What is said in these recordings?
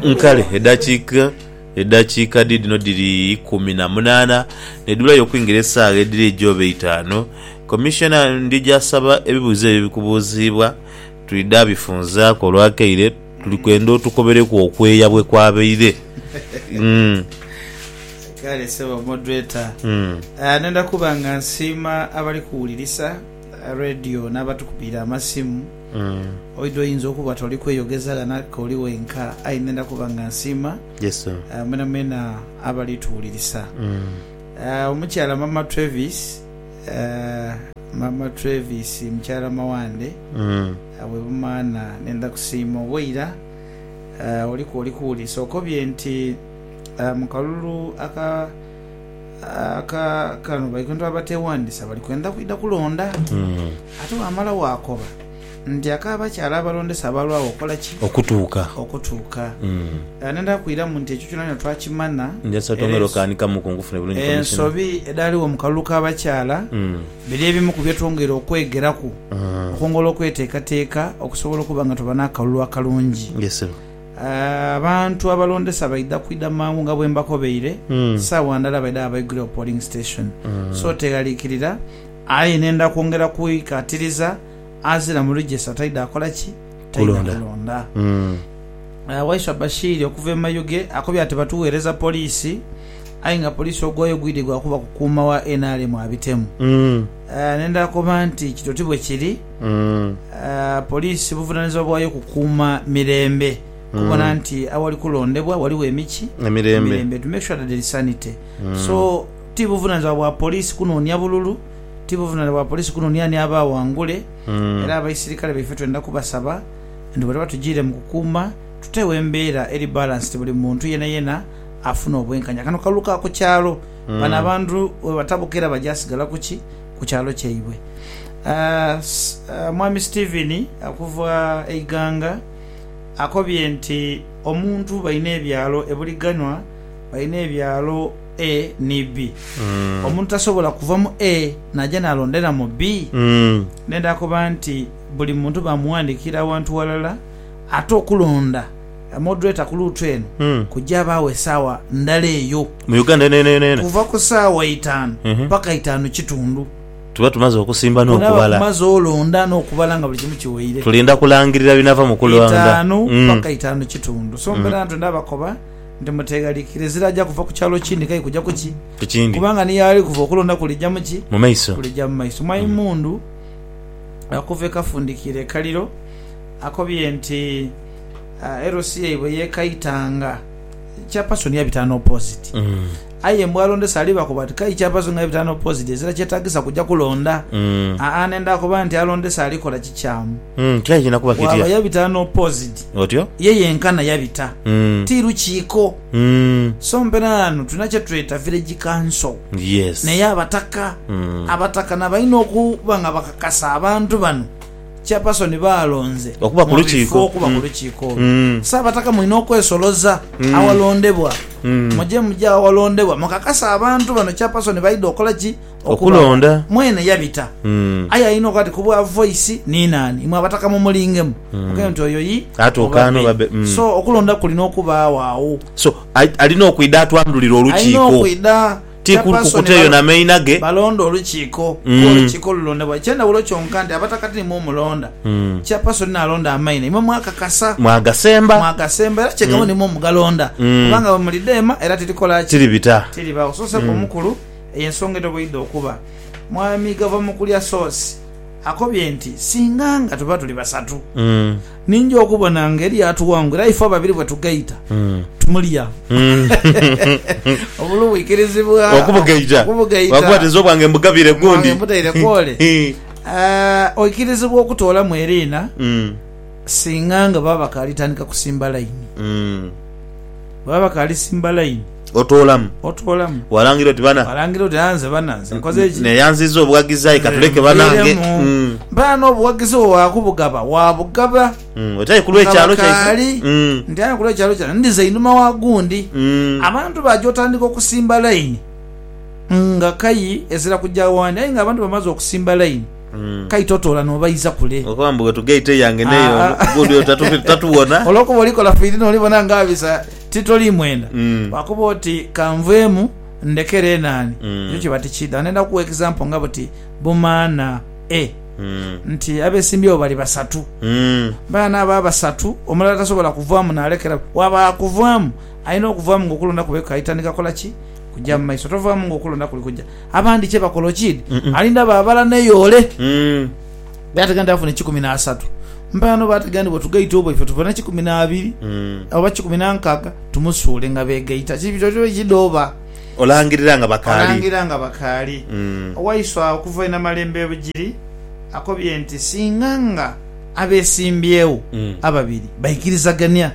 Nkale edhakiika edhakiika dhiidhino dhiri ikumi na munaana nedhibulayo okwingira esaawa edhiri eidhi oba eitaanu, Commissioner ndidha saba ebibuuzo ebyo ebikubuuziibwa twidha bifunzaaku olwakaire tuli kwenda otukobereku okweeya bwekwabaire. Kale sebo moderator nenda kuba nga nsiima abali kuwulirisa. Radio n'abatukubiira amasimu. Oidha oyinza okuba toli kweyogeza ghano aye k'oli wenka, aye ndhenda kuba nga nsiima mwenamwena abali tuwulirisa. Omukyala Maama Travis, Maama Travis mukyala Mawande we Bumaana ndhenda kusiima oba oira oli kwoli kuwulirisa. Okobye nti mu kalulu aka. Kaakano baikundi abateewandisa bali kwenda kwidha kulonda. Ate bw'amala waakoba nti ak'abakyala abalondesa abalwagho okukola ki? Okutuuka. Okutuuka. Nindha kwiramu nti ekyo kyonakyona twakimanha. Njasa twongere okanikamuku nkufune bulungi Commissioner. Ensobi edhaligho mu kalulu k'abakyala biri ebimu ku bye twongere okwegeraku okwongera okweteekateeka okusobola okuba nga tuba n'akalulu akalungi. Abantu abalondesa baidha kwidha mangu nga bwe mbakobeire, saagha ndala baidha gha baigule ku polling station. So teghalikirira aye nenda kwongera kwikatiriza azira mu register taidha akola ki? Taidha kulonda. Waiswa Bashiri okuva e Mayuge akobye ati batugheereza poliisi aye nga poliisi ogwayo gwidhi gwa kuba kukuuma wa nrm abitemu. Nenda koba nti kito ti bwe kiri. Poliisi buvunanizibwa bwayo kukuuma mirembe, kubona nti awali kulondebwa waliwo emiki emirembe, to make sure that there is sanity so ti buvunanizibwa bwa poliisi kunonia bululu, ti buvunanizibwa bwa poliisi kunonia ani aba awangule era abaisirikale baife twenda kubasaba nti bwebaliba batujiire mu kukuuma tutegho embeera eri balanced buli muntu yenayena afune obwenkanya kano kalulu ka ku kyalo bano abantu webatabuka era bajasigala kuki? ku kyalo kyaibwe. Mwami Stephen okuva e Iganga akobye nti omuntu balina ebyalo ebulighanwa, balina ebyalo A ni B. Omuntu tasobola kuva mu A naja nalondera mu B. Nenda koba nti buli muntu bamuwandikira awantu walala ate okulonda. Moderator ku luutu eno kujabaagho esaawa ndala eyo. Mu Uganda yonayona yona. Kuva ku saawa itaanu paka itaanu kitundu. Tuba tumaze okusimba n'okubala. Bwonaba kumaze olonda n'okubala nga buli kimu kiweire. Tulinda kulangirira binava mu kulonda. Itaanu paka itaanu kitundu. So mbeera ntwenda bakoba nti muteghalikire ezira aja kuva ku kyalo kindi kai kuja ku ki? Ku kindi. Kubanga ni yaali kuva okulonda kulija mu ki? Mu maiso. Kulija mu maiso. Mwai Mmundu okuva e Kafundikira e Kaliro akobye nti. LC yaibwe yekaitanga Kyapasoni yabita no poziti aye mbu alondesa aliba koba ati kai Kyapasoni nga yabita no poziti ezira kyetagisa kuja kulonda aa nenda koba nti alondesa alikola kikyamu bwaba yabita no poziti ye yenkana yabita ti lukiiko so mpera ghano tulina kyetweta village council neyo abataka abataka nabalina okuba nga bakakasa abantu bano Chairperson baalonze Okuba ku mu lukiiko. bifo okuba ku Mm. lukiiko olwo. Mm. Ssaabataka mulina okwesoloza Mm. awalondebwa. Mm. Muje muje awalondebwa mukakase abantu bano Chairperson baidha okola ki? Okulonda. Mwene yabita. Mm. Aye alina okuba ati ku bwa Voice ni naani? Imwe abataka mumulingemu. Mm. Mugende nti oyo yi Atuuka oba ano oba bbe. bbe. Mm. So okulonda kulina okubaagho agho. So, ai- alina okwidha atwandhulire Alina olukiiko. okwidha. Ti kukuteyo na meina ge. Balonda olukiiko, ku olukiiko olulondebwa. Eky'endhawulo kyonka nti abatakati nimwo mulonda. Chairperson n'alonda amaina, imwe mwakakasa. Mwagasemba. Mwagasemba era kye gamba nimwo mugalonda. Kubanga bwe muli dheema era tirikola ki? Tiribita. Tiribagho. So Sseeka Omukulu, eyo ensonga etoboidha okuba. Mwami Gavamukuli Asoose akobye nti singa nga tuba tuli basatu, Ninja okubona nga eryatuwangula ife ababiri bwetugaita tumulya obulu bwikirizibwa okubugaita lwakuba tinze obwange mbugabire gundi mbutaire kwole eh, oikirizibwa okutoolamu eriina singa nga baba bakaali tandika kusimba layini. Bwebaba bakaalisimba layini. Otoolamu. Otoolamu. Walangira oti bana. Walangira oti aa nze bana nze nkoze ki? Neeyanziza obughagizi aye ka tuleke banange. Bana n'obughagizi bwo waakubugaba waabugaba. Oti aye ku lw'ekyalo kyaife. Nti aye ku lw'ekyalo kyaife ndiza einhuma wa gundi. Abantu baja otandika okusimba layini nga kayi ezira kugya w'andi aye ng'abantu bamaze okusimba layini. Kaita otoola n'obaiza kule. Okoba mbu wetugaita eyange n'eyo ono, gundi oyo tatu- tatuwona. Olwokuba olikola fiiri n'olibona nga bisa ti toli mwenda, bwakuba oti, Ka nveemu, ndekere eno ani. Ekyo kiba tikiidha. Ndenda kugha example nga buti bumaana A nti abesimbyewo bali basatu. Baana abo abasatu omulala tasobola kuvaamu n'alekera buli. Bwaba akuvaamu, alina okuvaamu ng'okulonda kwe kukaita ni kakola ki? Kuja mu maiso. Tovaamu ng'okulonda kuli kuja. Abandi kye bakola okidi alinda babala neyoole be ategera nti afune kikumi na asatu mpela noba ategera nti bwetugaita obwo ife tufune kikumi na abiri oba kikumi na nkaga tumusuule nga begaita kidooba Olangirira nga bakaali. olangirira nga bakaali. Owaiswa okuva inamalembebgiri akobye nti singa nga. Abeesimbyewo ababiri baikirizagania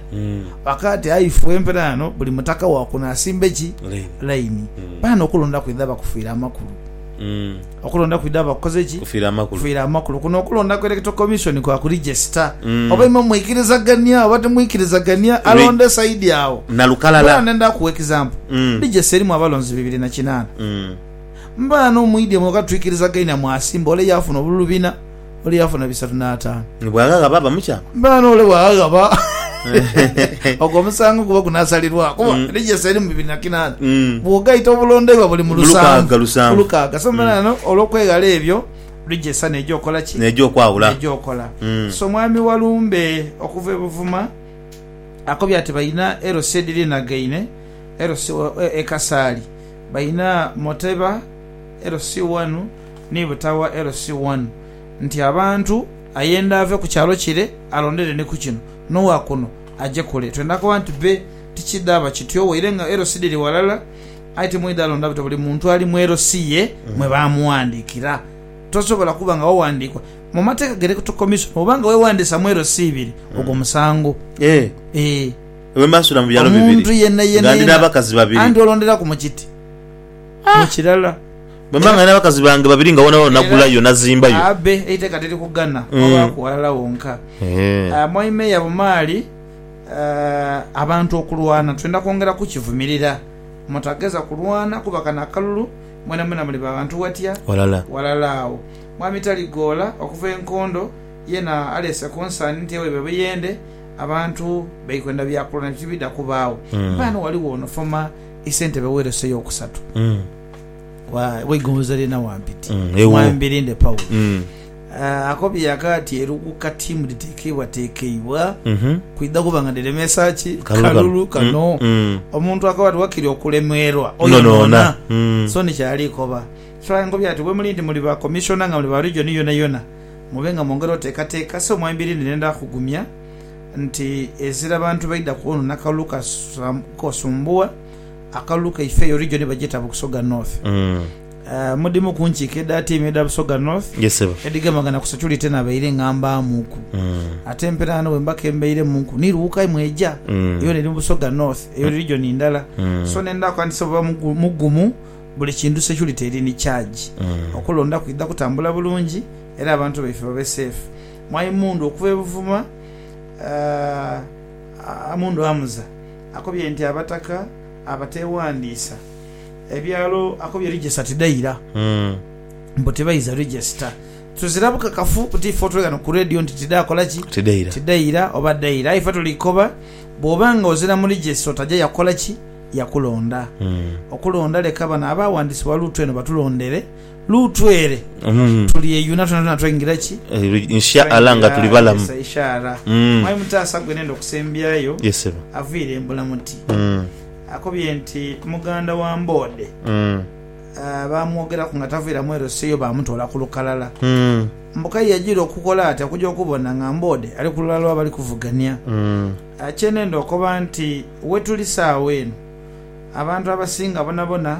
bakaati, Aye ife empera ghano buli mutaka wa kuno asimbe ki? Laini. Baano okulonda kwidha bakufiira amakulu. Okulonda kwidha bakukoze ki? Kufiira amakulu. Kuno okulonda ku Electoral Commission kwa kulijesita oba imwe mwikirizagania oba timwikirizagania. Alonde saidi agho. Mbweenu ndenda kuwa ekizampo. Lijesita erimu abalonzi bibiri na kinaana. Mbano mwidhye mweka twikirizagaine mwasimba ole yaafuna obululu bina. oli yafuna bisatu n'ataanu. Ni bwaghaghaba bamukyaku. Mbaana ole bwaghaghaba, ogwo omusango guba gunaasalirwaku. Kuba Register erimu bibiri na kinaana, bwogaita obulondoibwa buli mu lusanvu ku lukaaga. So mbaana ghano olw'okweghala ebyo, Register n'eja okola ki? N'eja okwawula. N'eja okola. So mwami Walumbe okuva e Buvuma akobye ati balina LC edhirinagaine, LC e Kasaali, balina Moteba, LC one ni butawa LC one nti abantu ayenda ave ku kyalo kire alondere ni ku kino, n'owa kuno aje kule. Twenda koba nti be tikidhaba kityo waire nga LC dhiri ghalala. Aye timwidha alonda buti buli muntu ali mu LC ye mwe baamughandiikira. Tosobola kuba nga waghandiikwa. Mu mateeka ge Electoral Commission bw'oba nga weewandiisa mu LC ibiri, ogwo musango. Eeh, Eeh. lwe mbaasuula mu byalo bibiri, Omuntu yenayena nga ndi yena n'abakazi babiri. andyoolonderaku mu kiti. Mu kirala, bwe mba nga nina bakazi bange babiri nga woonawoona nagulayo, nazimbayo. Abe, eiteka tiri kughana kwabaaku ghalala wonka. Mwami Meeya Bumaali, Abantu okulwana twenda kwongera kukivumirira. Mutagheza kulwana kuba kano akalulu mwenamwena muli ba bantu watya ghalala agho. Mwami Taligoola, Okuva e Nkondo yeena aleese konsaani nti ewaibwe e Buyende abantu bali kwenda bya kulwana ebyo tibidha kubaagho. Mpaano wali woonosoma. Isentebe w'eroso ey'okusatu w'eigonza ly'e Nawampiti, Mwambi Linde Paul, akobye aka ati eruguka tiimu dhitekeibwatekeibwa kwidha kuba nga dhiremeesa ki kalulu kano. Omuntu akoba ati wakiri okulemerwa oyo mwona so ni kyali koba. Kyagulanhi akobye ati bwemuli nti muli ba Commissioner nga muli ba Region yonayona mube nga mwongera oteekateeka, so Mwambi Linde nenda kugumya. Nti ezira bantu baidha kwonona kalulu kosumbuwa akalulu kaife eyo region bagyeta Busoga North. Mudimu ku nkiiko edha tiimu edha Busoga North edhigemagana ku security nabaire ngambaamuku ate empera ghano bwemba kembeiremu ni lughuka mweja yona eri mu Busoga North eyo region ndala so nendhaaku anti sebo ba mugumu buli kintu security eri ni charge okulonda kwidha kutambula bulungi era abantu baife babe safe. Mwai Mundu okuva e Buvuma, Amundu Hamza, akobye nti abataka abateewandiisa ebyalo akobye register tidhaira mbu tibaidha register. Tuzira bukakafu buti ife otweghano ku Radio nti tidhaakola ki? Tidhaira oba dhaira. Aye ife tuli kukoba bw'oba nga ozira mu register otaja yakukola ki? Yakulonda. Okulonda leka bano abaawandiisibwa luutu eno batulondere. Lutwere tulyeyuna twonatwona twaingira ki? Insha Allah nga tuli balamu. Twaingira Isa Insha Allah. Mm. Mwami Mutaasa gwe nenda okusembyayo Yes sebo. aviire mbula muti. Mm. Akobye nti muganda wa Mboode Mm. ah, baamwogeraku nga taviira Mwerosi eyo baamutoola ku lukalala. Mm. Mbu k'aye yajiira okukola ati okuja okubona nga Mboode ali ku lulala lw'abali kuvugania. Mm. Ah, Kye nenda okoba nti wetuli saagho eno abantu abasinga bonabona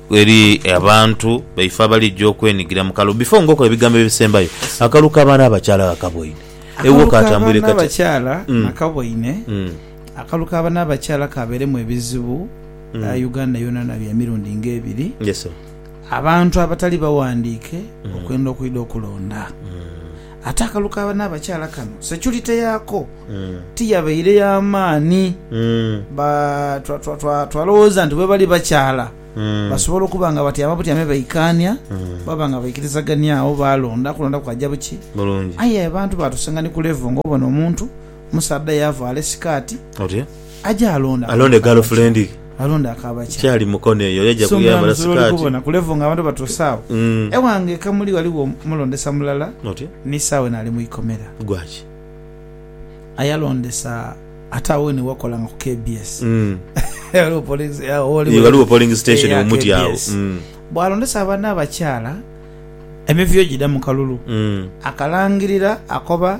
Eri abantu baife abalija okwenigira mu kalulu before ngokola ebigambo ebisembayo, akalulu ka baana abakyala ghakaboine ewuwo katambwire katya? Akalulu ka baana abakyala ghakaboine, akalulu ka baana abakyala kaberemu ebizibu Uganda yonayona bya mirundi nga ebiri abantu abatali bawandiike okwenda okwidha okulonda. Ate akalu ka banaabakyala kano securite yaako tiyabaire ya maani. Ba, twa, twa, twa, twalowooza nti bwebali bakyala, basobola okuba nga batyama butyame baikaania, baba nga baikirizagania agho, baalonda, kulonda kwaja buki. Aye abantu baatusenga ni ku level nga obona omuntu, Omusaadha yaavaala esikaati Otyo. aje alonde aka Alonde bakaaba girlfriend ki- ye. alonde aka bakya. Kyali mukono eyo yaja So kuyambala mulamuzi lwoli sikaati. kubona ku level nga abantu batuuse agho. Mm. Ewange e Kamuli ghaligho omulondesa mulala Otyo. ni sawa eno ali mu ikomera. Gwaki? Aye alondesa ate agho wene wakolanga ku KBS. Mm. Ghaligho polling- eh, agho Ye, Ghaligho polling station eya omuti agho. KBS. Mm. Bw'alondesa abaana abakyala emivuyo gidha mu kalulu. Mm. Akalangirira akoba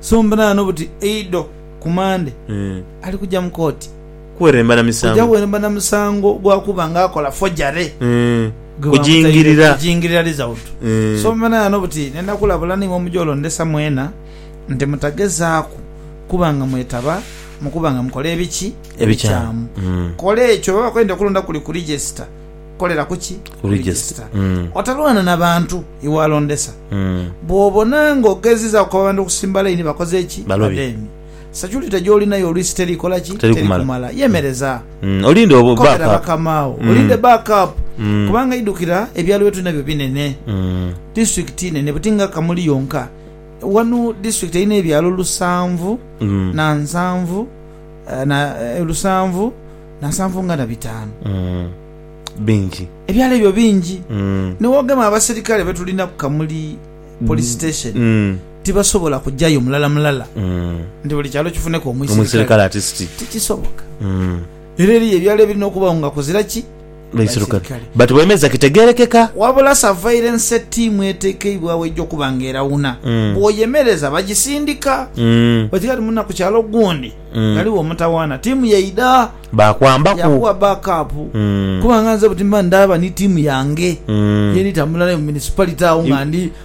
So mbunaano buti eidho ku Mande ali kuja mu kooti kuja kuweeremba na musango gwa kuba nga akola fojare gwe bamutaire ku kujingirira result. So mbunaano buti nenda kulabula ni ng'omuja olondesa mwena nti mutagezaaku kuba nga mwetaba mu kuba nga mukola ebiki? Ebikyamu. Kola ekyo bye bakola nti okulonda kuli ku register. Kolera ku ki? Ku register. Otalwana na bantu iwalondesa. Bw'obona ng'ogezizaaku okukoba abantu okusimba layini bakoze ki? Balobi. Bademi. Securite gy'olinayo oluisi teri kola ki? Teri kumala. Yemereza. Olinde obo, back Kobera up. bakamaagho. Olinde back up. Kubanga idhukira, ebyalo bye tuli nabyo binene. Disitulikiti nene buti nga Kamuli yonka. Wano disitulikiti erina ebyalo lusanvu na nsanvu, na, lusanvu. na nsanvu nga na bitaanu. Mm. Bingi. Ebyalo ebyo bingi. Mm. Ni bwogema abaserikale be tulina ku Kamuli Police mm. Station, mm. tibasobola kujayo mulala mulala mm. nti buli kyalo kifuneku omwiserikale. Tikisoboka. Mm. Era eriyo ebyalo ebirina okubawo nga kuzira ki? baisirukale but bwemeza kitegerekeka. Wabula savaire nsi ettiimu etekeibwagho egy'okuba nga erawuna bwoyemereza bagisindika. Oti kati muna ku kyalo gundi ghaligho omutawaana ttiimu yaidha yakuwa back up kuba nga nze buti mba ndaaba ni ttiimu yange yeri tambula nayo mu municipality agho nga ndi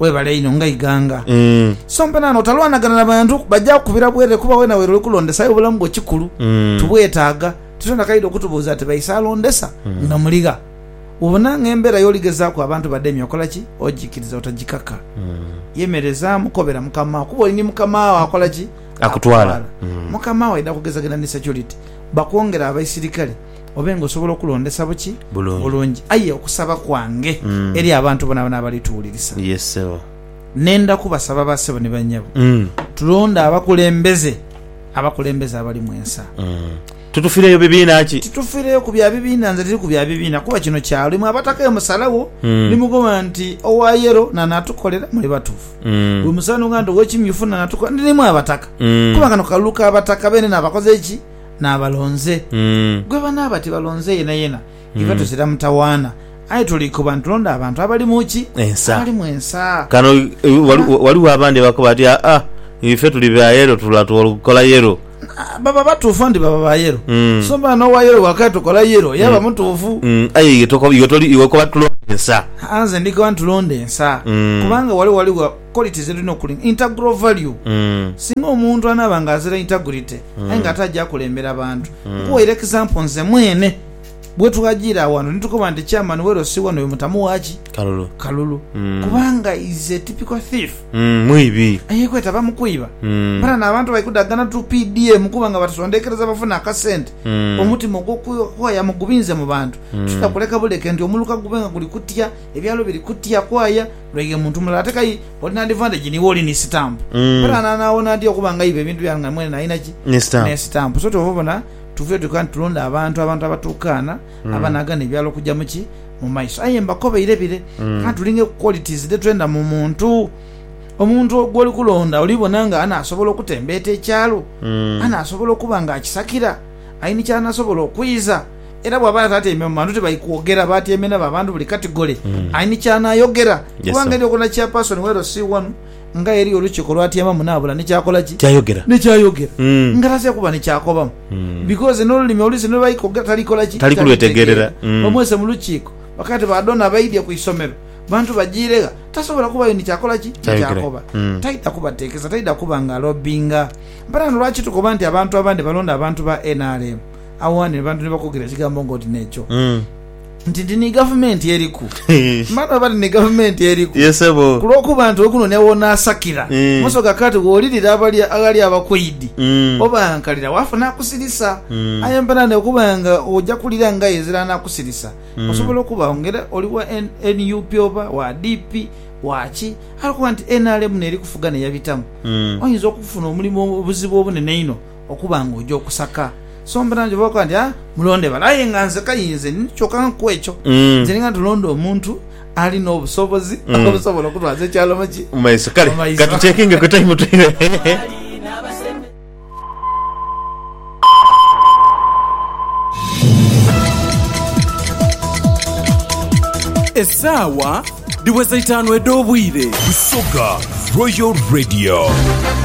Webale inho nga iganga. So mpenana otalwanagana na bantu baja kukubira bwerere kuba wena werole kulondesa aye obulamu bwo kikulu tubwetaaga. Tituli na kaidho kutubuuza ati baise alondesa nga muligha. Wobona nga embera yoligezaaku abantu bademye okola ki? Ojikiriza otajikaka. Yemerezaamu kobera mukama wo kuba oli ni mukama wo akola ki? Akutwala. Mukama wo aidha kugezageza ni security bakwongere abaisirikale. obe nga osobola okulondesa buki? Bulungi. Aye okusaba kwange eri abantu bonabona abali tuwulirisa, nenda kubasaba ba sebo ni banyabo, tulonde abakulembeze abakulembeze abalimu ensa. Titufireyo bibiina ki? Titufireyo ku bya bibiina. Nze tiri ku bya bibiina kuba kino kyalo. Imwe abataka eyo musalawo ni mukoba nti owa yero n'anatukolera, muli batufu. Bwe musanhuka nti ow'ekimyufu n'anatukolera, ndi n'imwe abataka. Kuba kano kalulu ka bataka beene n'abakoze ki? n'abalonze. Gwe banaaba tibalonze yenayena, ife tuzira mutawaana. Aye tuli koba nitulonda abantu abali mu ki? Ensa. Abali mu ensa. Kano waliwo abandi abakoba bati, Aa, ife tuli ba yelo tula tukola yelo. Baba batuufu nti baba ba yelo. So mba n'owa yelo bw'akaya tukola yelo, yaba mutuufu. Aye iwe tokoba, iwe okoba tulonde ensa. Aa, nze ndikoba nitulonda ensa. Kubanga wale waliwo. quality ze tulina okulinda, integral value. Singa omuntu anaaba nga azira integrity aye nga ate aja akulembera bantu. Nkuwaire example nze mwene bwetwajiira awantu ni tukoba nti chairman we Rossie one oyo mutamu wa ki? Kalulu. Kalulu. Kubanga is a typical thief. Mwibi. Eyekweta ba mu kwiba. Mpana n'abantu bali kudagana to PDM kuba nga batusondekereza bafune akasente. Omutima ogw'okwaya mugubinze mu bantu. Titwidha kuleka buleke nti omuluka gube nga guli kutya, ebyalo biri kutya kwaya, Lwaighe muntu mulala ate kai oli n'adhiva nti gini w'oli ni sitampu. Kale anaana awona atya okuba ng'aiba ebintu bye nga mwene n'alina ki? Ni sitampu. So kyova obona tuvire tuka nti tulonde abantu, abantu abatuukaana, abanaagana ebyala okuja mu ki? Mu maiso. Aye mbakobeire bire, anti tuli ng'eku qualities dhe twenda mu muntu. Omuntu gw'oli kulonda oli bona nga anaasobola okutembeeta ekyalo? Anaasobola okuba ng'akisakira? Ai ni ky'anasobola okwiiza? era bwaba atatyaime mu bantu tibali kwogera batyaime nabo abantu buli katigole mm. aini kyanayogera yes, kubanga eri okona chairperson wa LC one nga eri olukiiko lwatyaimamu nabula nikyakolaki kyayogera nikyayogera mm. nga taze kuba nikyakobamu mm. because nolulimi oluisi nolubali kwogera talikolaki tali kulwetegerera mm. bamwese mu lukiiko bakati badona baidye ku isomero bantu bajiregha tasobola kubayo nikyakolaki nikyakoba mm. taida kubatekesa taida kuba nga lobinga mparano lwaki tukoba nti abantu abandi balonda abantu ba nrm Agho ghano abantu ni bakoogera ekigambo ng'oti n'ekyo nti, Ndi ni gavumenti eriku. Mani oba ndi ni gavumenti eriku! Ye sebo. Ku lw'okuba nti okuno ni aw'onaasakira Eh. muso ga kati gh'olirira abali aghali abakwaidi, Mm. obaankalira, waafa n'akusirisa. Mm. Aye mperane okuba nga oja kulira ng'aye ezira anaakusirisa. Osobola okuba agho nga era oli wa N- nup oba wa DP, wa ki, aye okuba nti nrm n'eri kufuga n'eyabitamu, Mm. oyinza okufuna omulimu obuzibu obunene inho. Okuba nga oja okusaka, so mpola nti oba okoba nti, Ah, mulonde bale. Aye nga nze kainze nini kyoka nga ku ekyo, nze ninga tulonde omuntu ali n'obusobozi obusobola okutwaza ekyalo mu ki? Mu maiso. Kale ka tucekinge ku taimu twibe. Esaawa dhiweza itaanu edh'obwire. Busoga Royal Radio.